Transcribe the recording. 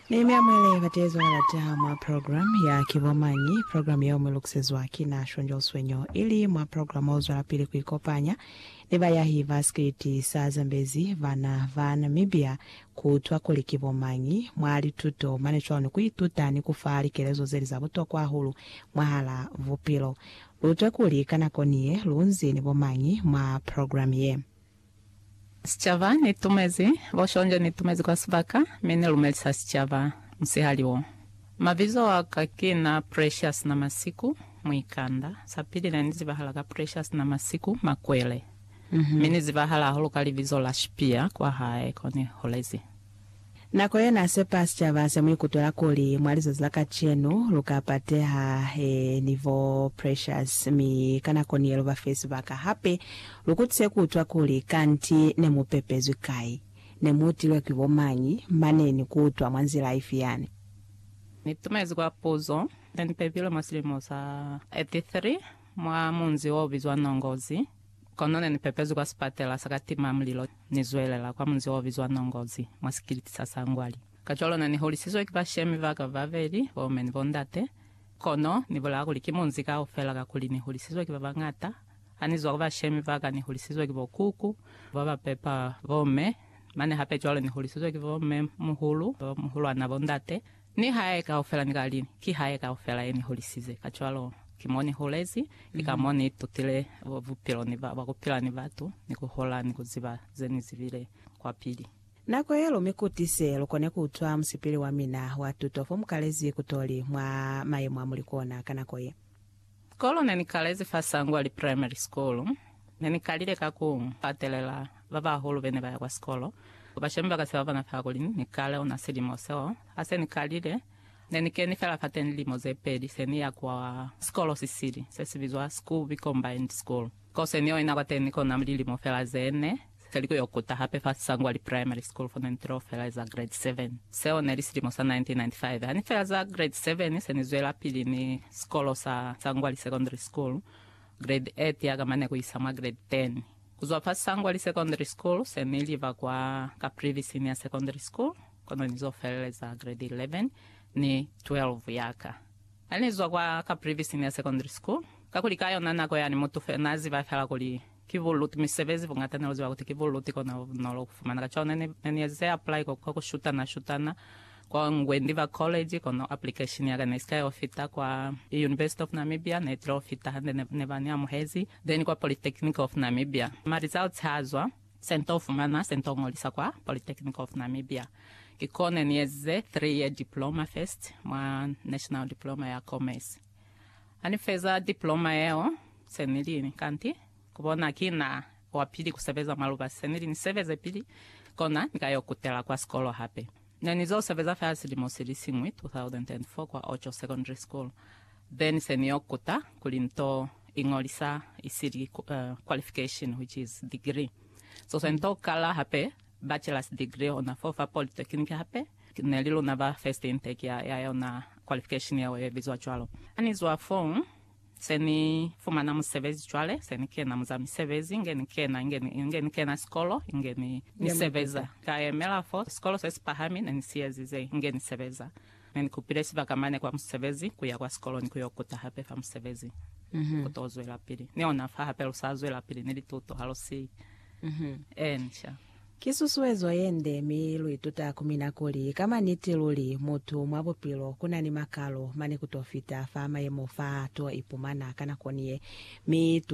Ni mi amwele bateezwa na lata mwa program ya Ki Bo Mañi? Program yeo mu lukusezwa ki na Shonjol Suenyo, ili mwa program o zwelapili ku ikopanya ni bayahi ba sikiliti sa Zambezi bana ba Namibia ku utwa kuli ki bo mañi mwa lituto, mane cwalo ni ku ituta ni ku fa likelezo zeli za butokwa hahulu mwahala bupilo. Lu utwe kuli ka nako niye lu nzi ni bo mañi mwa program ye. Sicaba, Ni tumezi, bo Shonjo, ni tumezi kwa sibaka, mi ni lumelisa sicaba, musihali wo. Mabizo a ka ki na Precious Namasiku, muikanda. Sapili ne ni zibahala ka Precious Namasiku, Makwele. Mi ni zibahala hahulu ka libizo la Shipia kwa hae ko ni holezi. Nako ye n'a sepa sicaba se mu ikutwela kuli mwa lizazi la kacenu lu ka pateha he ni bo Precious, mi ka nako ni ye lu ba fe sibaka hape lu kutise ku utwa kuli kanti ne mu pepezwi kai, ne mu utilwe ki bo mañi, mane ni ku utwa mwa nzila ifi yani. Ni tumezi kwa puzo ye ni pepilwe mwa silimo sa 83 mwa munzi o bizwa Nongozi. Kono ne ni pepezwi kwa sipatela sa ka tima mulilo, ni zwelela kwa munzi o bizwa Nongozi, mwa sikiliti sa Sangwali. Kacwalo ne ni holisizwe ki bashemi ba ka babeli, bo me ni bo ndate. Kono ni bulaya kuli ki munzi kaufela kakuli ni hulisizwe ki ba bañata. Ha ni zwa ku bashemi ba ka ni hulisizwe ki bo kuku ba ba pepa bo me, mane hape cwalo ni hulisizwe ki bo me muhulu, bo muhulwana, bo ndate. Ni hae kaufela ni ka li, Ki hae kaufela ye ni hulisize, kacwalo ki mo ni hulezi, ki ka mo ni tutile bupilo ni ba, bwa ku pila ni batu, ni ku hola, ni ku ziba ze ni zibile kwapili. Nako ye lu mi kutise, lu kone ku utwa musipili wa mina wa tuto fo mu kalezi kutoli mwa mayemo a mu li kona ka nako ye. Sikolo ne ni kalezi fa Sangwali Primary School, ne ni kalile ka ku katelela ba bahulu be ne ba ya kwa sikolo. Bashemi ba ka se ba bona fela kuli ni kale ona silimo seo. Ha se ni kalile, ne ni keni fela fateni lilimo ze peli se ni ya kwa sikolo si sili, se si bizwa Skuby Combined School. Ko se ni yo ina kwateni kona lilimo fela ze ne. Se li ku yo kuta hape fa Sangwali Primary School fo ne ni tilo felaeza Grade 7. Seo ne li silimo sa 1995. Ha ni felaeza Grade 7, se ni zwelapili ni sikolo sa Sangwali Secondary School, Grade 8 ya ka mane ku isa mwa Grade 10. Ku zwa fa Sangwali Secondary School, se ni liba kwa Caprivi Senior Secondary School, kono ni zo feleleza Grade 11 ni 12 ya ka. Ha ni zwa kwa Caprivi Senior Secondary School, kakuli ka yona nako yani mutu fela n'a ziba fela kuli, Ki buluti misebezi buñata ne uziba kuti ki buluti kona bunolo kufumana. Kacwalo ne ni ne ni ezize apply kwa kwa kushutana shutana kwa Ngwendi ba college kono application yaka ne isika yo fita kwa University of Namibia ne tilo fita hande ne ne ba ni amuhezi then kwa Polytechnic of Namibia ma results ha zwa se nto fumana se nto ngolisa kwa Polytechnic of Namibia ki ko ne ni ezize three year diploma first mwa National Diploma ya Commerce. Ha ni feza dipoloma yeo, se ni li, Kanti ku bona ki na wa pili ku sebeza mwa lubasi, se ni li ni sebeze pili, kona ni ka yo kutela kwa sikolo hape. Ne ni zo sebeza fela silimo si li siñwi, 2004, kwa Ocho Secondary School, then se ni yo kuta kuli nto iñolisa isili qualification, which is degree. So se nto kala hape Bachelor's degree yona fo fa polytechnic hape ne li luna ba first intake ya ya yona qualification yeo ye bizwa cwalo. Ha ni zwa foo, se ni fumana musebezi cwale, se ni kena mu za misebezi inge ni kena, inge ni, inge ni kena sikolo, inge ni, ni sebeza. Ka yemela fo sikolo se si pahami ne ni si ezize, inge ni sebeza. Ne ni kupile sibaka mane kwa musebezi, ku ya kwa sikolo ni ku yo kuta hape fa musebezi. Ku to zwelapili ni ona fa hape lu sa zwelapili ni lituto ha lu si ensha. Ki susuezo ye nde, mi lu ituta ku mina kuli, ka maniti luli, mutu mwa bupilo ku na ni makalo mane ku to fita fa mayemo fa to ipumana ka nako ni ye. Mi tu.